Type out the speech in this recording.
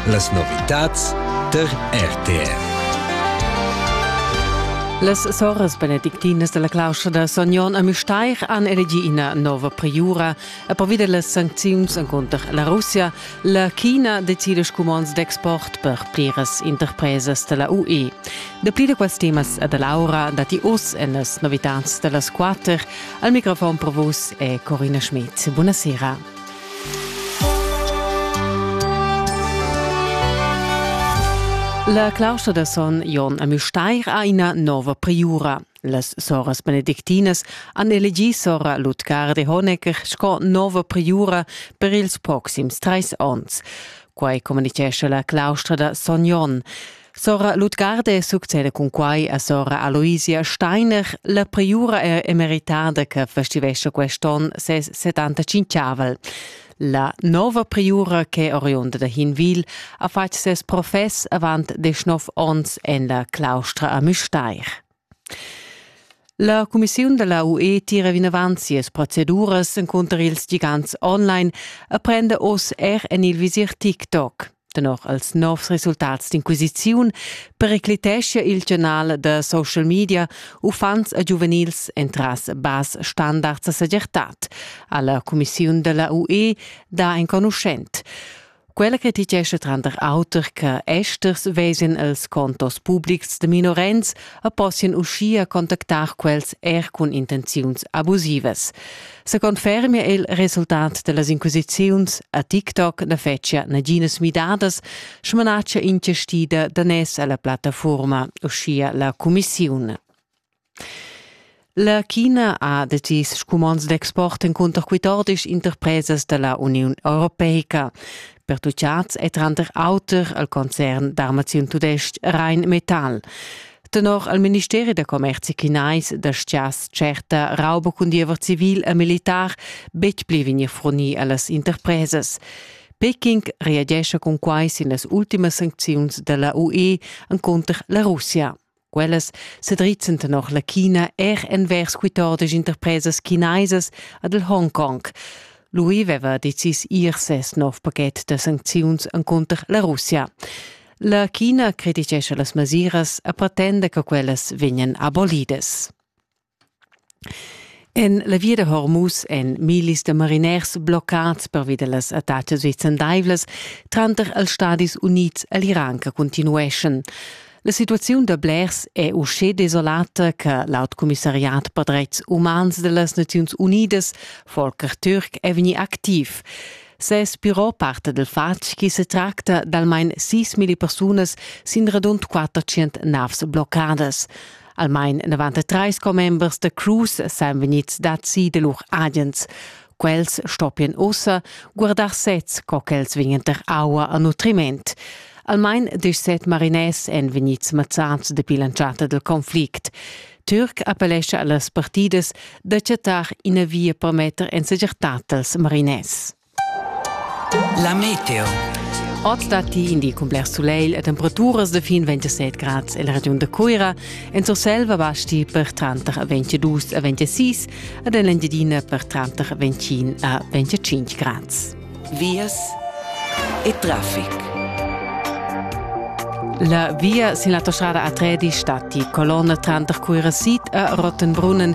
Las novitads tar RTR. Las soras benedictinas della claustra da Son Jon a Müstair han elegi ina nova priura e per vide las sancziuns contro la Russia, la China decide scumonds d'export per pliras interpresas della UE. De pli de quels temas e dell'aura dati us en las novitads dellas quater. Al microfon pro vus è Corina Schmidt. Buonasera. La claustra da son Jon a Müstair ha ina nova priura. Las soras benedictinas han elegì sora Lutgar de Honecker sco nova priura per ils proxims trais onns. Quai communitgescha la claustra da son Jon. Sora Lutgarde succeda cun quai a sora Aloisia Steiner, la priura er emeritada che festivescia quest'on ses 75-avel. La nova priura che oriunda da Hinwil ha fatg ses profess avant deschnov onns en la claustra a Müstair. La cumissiun da la UE tira vinavant sias proceduras encunter ils gigants online e prenda oz er en il visir TikTok. Tenor als novs resultats d'inquisiziun periclitescha il gianal da social media uffants e giuvenils entras bas standards a segirtad, ha la cumissiun da la UE dà enconuschent. Quella criticescha tranter auter che esters vesen els contos publics de minorens e possien uschia contactar quels er cun intenziuns abusivas. Se confermia il resultat dellas inquisiziuns a TikTok ne fetschia naginas midadas, smanaccia ingestida danès alla plattaforma, uschia la Commissione. La China ha decis scumonds d'export encunter quitordis interpresas dalla Uniun europeica. Pertucciats è tranter auter al concern d'armaziun tudestg Rheinmetall. Tenor al ministeri da commerzi chinais da schias certa rauba cun diever civil e militar betg pli vegnir furnì a las interpresas. Peking reagescha cun quai sin las ultimas sancziuns da la UE encunter la Russia. Quellas sedrizzan tenor la China er envers quitordis interpresas chinaisas ad el Hongkong. Lui veva decis ir ses nov pachet da sancziuns encunter la Russia. La China criticescha las mesiras e pretenda che quellas vegnan abolidas. En la via da Hormuz èn millis da mariners bloccads pervi da las attacas vicendaivlas tranter els Stadis Unids e l'Iran che cuntinueschan. La situaziun da blers è uschè desolata che l'aut commissariat per dretgs umans da las Naziuns Unidas, Volker Türk, è vegnì activ. Ses biro parta dal fatg che se tracta d'almain 6.000 persunas sin radund 400 navs bloccadas. Almain 93 commembers da Cruz san vegnids dazi da lur agens. Quels stoppian ussa guardar sez, co ch'els vegnan tar aua a nutriment. Almain dus set mariners èn vegnids mazzads dapi l'entschatta dal conflict. Türk appellescha a las partidas da chattar ina via per metter en segirtad als mariners. La meteo. Oz datti in di cun bler sulegl e temperaturas da fin 27 grads en la regiun da Cuira. En Surselva basti per tranter 22 a 26 ed en l'Engiadina per tranter 25 a 25 grads. Vias e traffic. La via sin la autostrada A3 di stati colonna tranter Cuira Sid e Rottenbrunnen